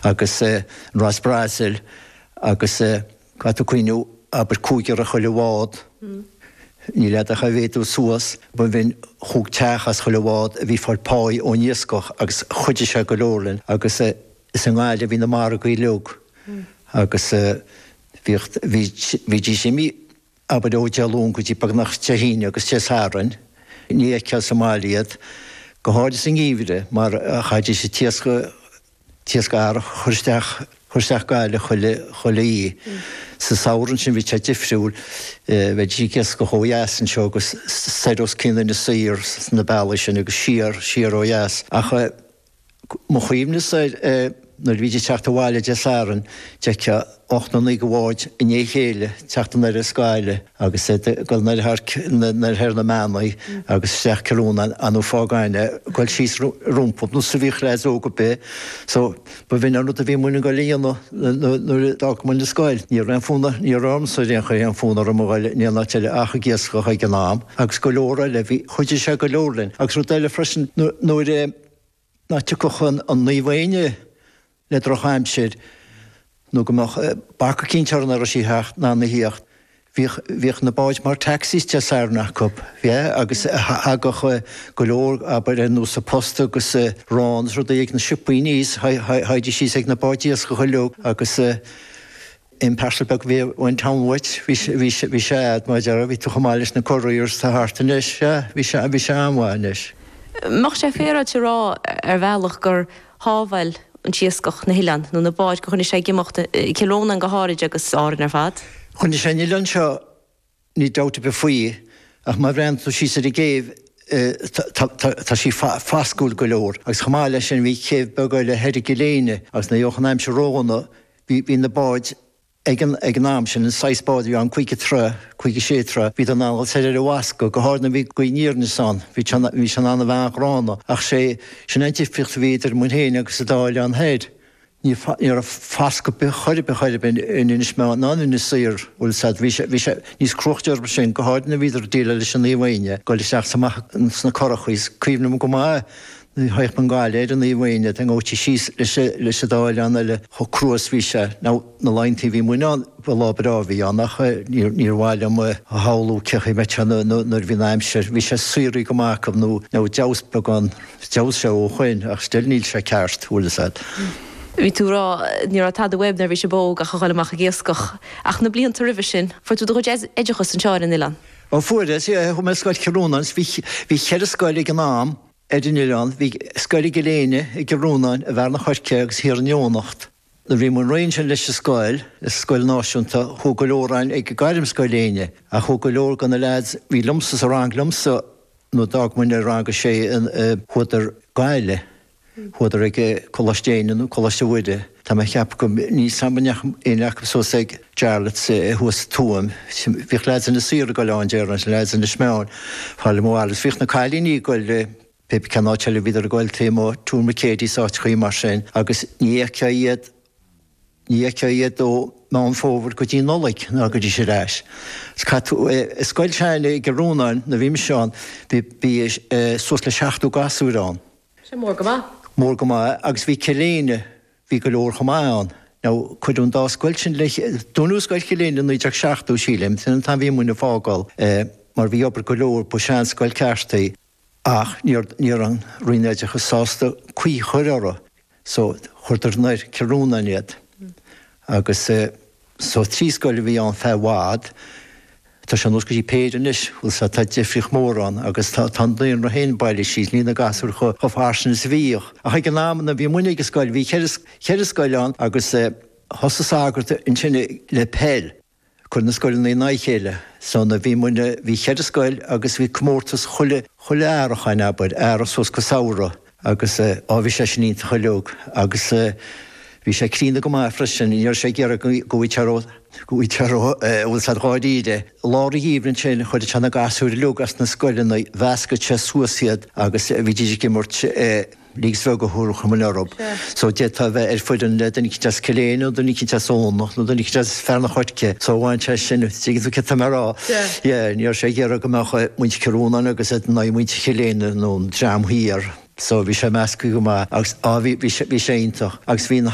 Agus an Ros Breasail agus caithfidh tú cuimhneamh abair cúigear i chuile bhád, níl a'd ach a mhéadú suas, ba bhin chúig teach as chuile bhád a bhí fáil páí ón iascach agus chuidigh sé go leor linn. Agus is i nGaillimh a bhí na margaí uilig agus bhíodh, bhídís imithe. abair ó Dé Luain go dtí beagnach Dé hAoine agus Dé Sathairn, ní fheicfeá sa mbaile iad, go háirithe sa ngeimhreadh, mar chaithfidís an t-iasc a chur isteach, chur isteach go Gaillimh chuile oíche. Sa samhradh ansin, bhí sé difriúil, bheidís ag iascach ó dheas anseo agus soir os cionn Inis Oírr sna bealaí sin agus siar, siar ó dheas. Ach. Mo chuimhnesa, nuair a bhíd ag teacht abhaile Dé Satharn, d'fheictheá ocht nó naoi de bháid i ndiaidh a chéile ag teacht anoir as Gaillimh agus iad ag dul ndeir thearc ndeir thoir na mbeannaí agus isteach Cill Rónáin nó Fáth Gann ag goil síos rompu nó sa mhíochaine fhaiseog ar bith. So, ba bhin é an rud a bhí muinn ag goil a dhéanamh nuair a d'fhág muinn an scoil. Ní raibh aon fonn, ní raibh ormsa ar aon chor aon fonn orm a ghoil in aon áit eile ach ag iascach ag an am agus go leor eile. Bhí. Chuidigh sé go leor linn, agus rud eile freisin, nuair nach dtiocfadh an Naomh Éinne le drochaimsir nó go mbeadh bac eicínt uirthi nach raibh sí a theacht, in ann a theacht, bhíodh na báid mar taxis Dé Sathairn acu, yeah, agus thagadh go leor, abair, ar nós an posta agus arán is rudaí ag na siopaí aníos, théidís síos ag na báid iascaigh uilig agus. Aon parcel beag a bhí ón town uait, bhí sé a'd mar a déarfá, bhí tú chomh maith leis na couriers atá thart anois, sea, bhí sé an-mhaith anois. Mbeadh sé féaráilte a rá ar bhealach gur shábháil an t-iascach na hoileáin, nó na báid, gur choinnigh sé ag imeacht i gCill Rónáin go háirid agus Árainn ar fad. Choinnigh sé an oileán seo Níl dabht ar bith faoi, ach má bhreathnaíonn tú síos ar an gcéibh, tá sí fascúil go leor, agus chomh maith leis sin, bhí céibh beag eile thoir i gCill Éinne, agus nuair a gheobhadh an aimsir ródhona, bhí na báid ag an am sin, an saghas bád a bhí ann, caoga troigh, caoga sé troigh, bhíodar in ann a ghoil soir ar an bhfascadh, go háirid nuair a bhí gaoth aniar aneas ann, bhí sé an-ghránna, ach sé, sin an difríocht a bhí idir muinn féin agus an dá oileán thoir, Ní raibh fascadh ar bith, chor ar bith, chor ar bith, in Inis Meáin ná in Inis Oírr, bhuel, sea, bhí sé, bhí sé níos cruaichte orthu sin, go háirid nuair a bhíodar ag déileáil leis an Naomh Éinne, ag goil isteach is amach sna curachaí, is cuimhním go maith nuair a théadh muinn Gaillimh ar an Naomh Éinne, a dteangaídís síos leis an dá oileán eile, chomh crua is bhí sé. Now, na laethantaí a bhí muinn ann, ba lá breá a bhí ann ach níor mhaith liom a shamhlú cén chaoi a mbeadh sé nuair a bhí an aimsir, bhí sé síoraí go maith acu, nó, now, d'fheabhas beagán. D'fheabhsaigh sé ó shin, ach still níl sé ceart, bhfuil 's a'd. Bhí tú ag rá, ní raibh tada uaibh nuair a bhí sibh óg ach a dhul amach ag iascach. Ach na blianta roimhe sin, fuair tú do chuid oideachas anseo ar an oileán? Ó fuaireas, yeah. Chuaigh mé ar scoil Chill Rónáin, so bhí cheithre scoil ag an am ar an oileán. Bhí scoil i gCill Éinne, i gCill Rónáin, i bhFearann an Choirce agus thiar in Eoghanacht. Nuair a bhí muinn réidh ansin leis an scoil, an scoil náisiúnta, chuaigh go leor againn ag Gairmscoil Éinne, ach chuaigh go leor de na leaids a bhí liomsa sa rang liomsa, nuair d'fhág muinne rang a sé, chuadar Gaillimh, chuadar ag Coláiste Éinne nó Coláiste Mhuire. Tá mé ag ceapadh go, níl 's agam, an ndeachaigh éinne acu suas ag Jarlath's thuas sa Tuaim. Bhíodh leaids Inis Oírr ag goil ann, déarfainn, leaids Inis Meáin, fá le mo bhaile. Bhíodh na cailíní ag goil. Pip, cén áit eile, bhíodar ag goil taobh amuigh Tuar Mhic Éadaigh is áiteachaí mar sin agus ní fheictheá iad, ní fheictheá iad ó Mheán Fómhair go dtí Nollaig nó go dtagaidís ar ais. Agus, eh, i scoil s'againne i gCill Rónáin nuair bhí mise ann bhí, bhí eh, suas le seachtó gasúir ann. Sin mór go maith. Mór go maith eh agus bhí Cill Éinne, bhí go leor chomh maith ann. Now cuireadh an dá scoil sin le, dúnadh Scoil Chill Éinne i naoi déag seachtó sílim, sin an t-am bhí muinn a' fágáil eh mar bhí obair go leor, ba sin an scoil ceart í. Ach ní raibh an Roinn Oideachais sásta caoi chur orthu so chuireadar anoir Cill Rónáin iad. Agus so trí scoil a bhí ann feadh i bhfad. Tá sé anuas go dtí péire anois. Bhfuil 's a'd tá difríocht mhór ann agus tá an daonra féin bailithe síos. Níl na gasúir chomh fairsing is a bhíodh. Ach ag an am nuair bhí muinne ag an scoil bhí cheithre scoil ann agus thosaigh sagart ansin le peil. Cur na scoileanna in aghaidh a chéile. So nuair a bhí muinne, bhí cheithre scoil agus bhí comórtas chuile, chuile Earrach, an, abair, Earrach suas go Samhradh agus, á, bhí sé sin iontach uiliog agus bhí sé críonna go maith freisin, ní raibh sé ag iarraidh go, go bhfaightí ró, go bhfaightí ró, an bhfuil 's a'd, dháiríre. Lár an gheimhridh ansin, chuireadh sé na gasúir uiliog as na scoileanna, mheascadh sé suas iad agus bhídís ag imirt, eh, League seo go hurchar mo liorbh. So d'fhéadfá a bheith ar fhoireann le duine eicint as Cill Éinne nó duine eicint as Eoghanacht nó duine eicint as Fearann an Choirce. So bhain sé sin, dtuigeann tú céard tá mé ag rá. Yeah, ní raibh sé ag iarraidh go mbeadh muintir Chill Rónáin agus iad in aghaidh muintir Chill Éinne nó an dream thiar. So bhí sé measctha go maith agus, á, bhí, bhí sé, bhí sé iontach. Agus bhí na.